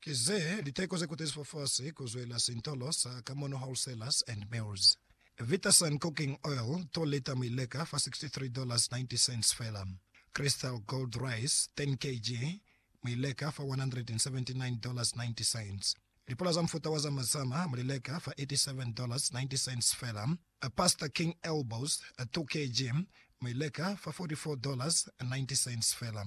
Ki ze liteko ze kuteziswa fasi ku zwela sintolo sa Kamono Wholesalers and Mills. Vitasun Cooking Oil, 2 lita mi leka fa $63.90 fela. Crystal Gold Rice, 10 kg, mi leka fa $179.90. Lipula za mufuta wa Zama Zama mu li leka fa $87.90 fela. Pasta King Elbows, 2 kg, mi leka fa $44.90 fela.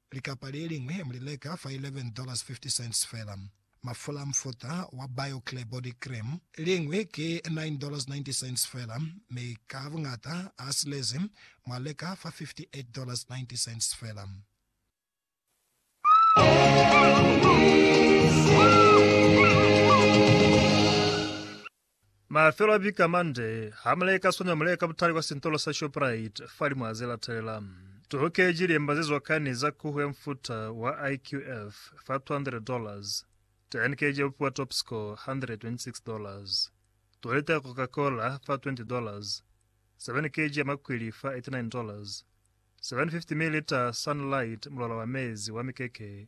Likapa le liñwi mu li leka fa $11.50 fela. Mafula a mufuta wa Bio-Clear Body Cream liñwi ki $9.90 fela, mi ka buñata a silezi mu a leka fa $58.90 fela. Mafelo a viki a mande, ha mu leka swana mu leka butali kwa sintolo sa Shoprite fa limwaha ze latelela. Tuhokeji liemba ze zwakani za kuhu ya mufuta wa IQF fa $200, 10 kg ya bupi wa Topscore, $126, 2 lita ya Coca-Cola fa $20, 7 kg ya makwili fa $89, 750 ml Sunlight mulwala wa mezi wa mikeke